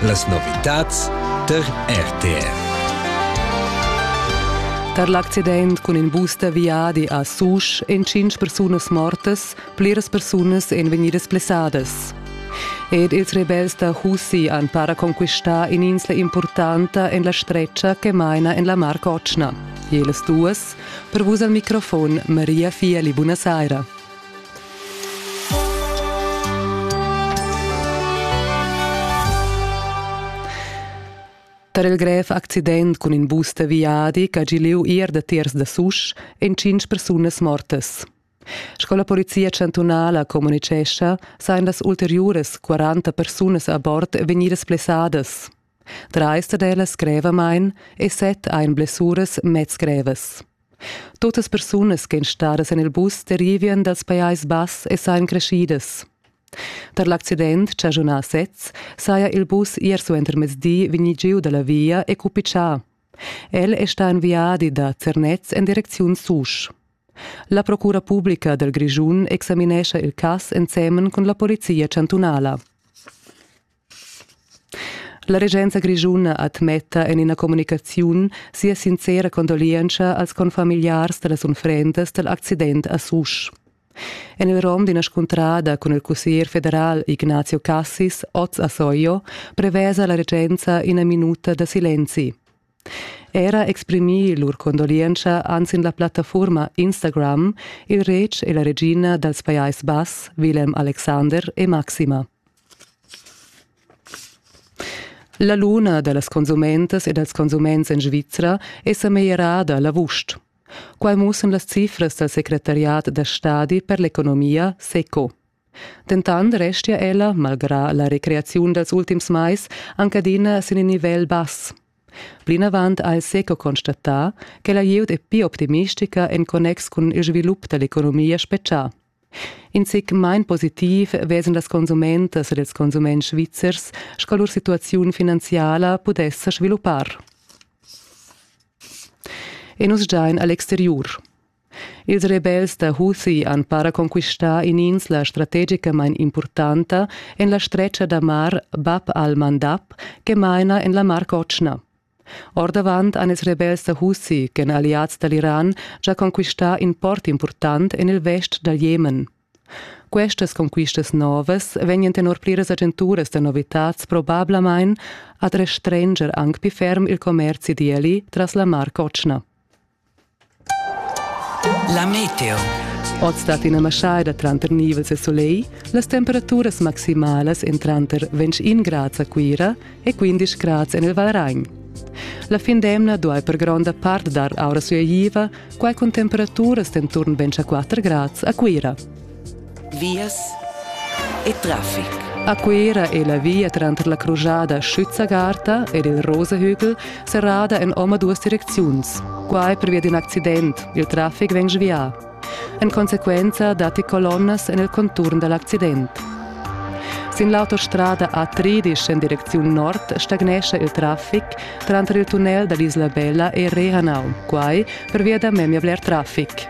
Las novitads tar RTR. Tar l'accident cun in bus da viadi a Susch èn tschintg persunas mortas, pliras persunas èn vegnidas blessadas. Ed ils rebels da Husi han para conquistà in'insla importanta en la stretga che maina en la Mar Cotschna. Jelas duas, per vus al microfon Maria Fieli, buonasera. Per il grev accident cun in bus da viadi che ha giu liu ier da tiers da Susch ein cinc persunas mortas. Sco la polizia chantunala communicescha, sain las ulteriuras 40 persunas a bord vegnidas plessadas. Trais dad ellas grevamain e set ein blessuras mez grevas. Tuttas persunas ch'ein stadas en il bus derivien dals Pajais Bass e sain creschidas. Per l'accident chaschunà sez saja il bus ier suentermezdi vegni giu dalla via e cupitschà. El è sta in viadi da Zernez en direcziun Susch. La Procura Publica del Grischun examinescha il cass ensemen con la Polizia chantunala. La regenza grischuna admetta en ina communicaziun sia sincera condolientscha als confamigliars da las unfrendas dal accident a Susch. En il rom d'ina scuntrada cun il cussier federal Ignazio Cassis, oz a Soio, prevesa la regenza ina minuta da silenzi. Era exprimir lur condolientscha han sin la plattafuorma Instagram il retg e la regina dals Pajais Bass, Willem Alexander e Maxima. La luna da las consumentas e dals consuments en Svizra è sa meglierada la vusch. Quai mussan las cifras dal secretariat da stadi per l'economia SECO. Dentant restia ella, malgrà la recreaziun dals ultims mais, anc adina sin in nivel bass. Plinavant ha il SECO constatà che la glieud è pli optimistica en connex cun il svilup da l'economia spetgà. In zic main positiv vesan las consumentas ed ils consuments svizzers sco lur situaziun finanziala pudess sviluppar. E nus giain a l'exteriur. Ils rebels da Husi han para conquistà in'insla strategicamain impurtanta en la stretga da mar Bab al-Mandab che maina en la Mar Cotschna. Ordavant han ils rebels da Husi, ch'èn alliads da l'Iran, già conquistà in port impurtant en il vest dal Jemen. Questas conquistas novas vegnan tenor pliras agenturas da novitads probablamain ad restranger anc pli ferm il commerzi d'eli tras la Mar Cotschna. La meteo. Oz dat ina maschaida tranter nivels e solegl, las temperaturas maximalas en tranter 21 grads a Cuira e 15 grads en il Valragn. La fin d'emna duai per gronda part dar aura sui Aviva, quai cun temperaturas d'enturn 24 grads a Cuira. Vias e traffic. A Cuera è la via tranter la crujada Schützagarta ed il Rosehügel serrada en omaduas direcziuns. Quai pervia d'in accident. Il traffic vegn svià. En consequenza datti colonnas en il conturn da l'accident. Sin l'autostrada A13 en direcziun nord stagnescha il traffic tranter il tunnel da l'Isla Bella e Rehanau, quai pervia da memia bler traffic.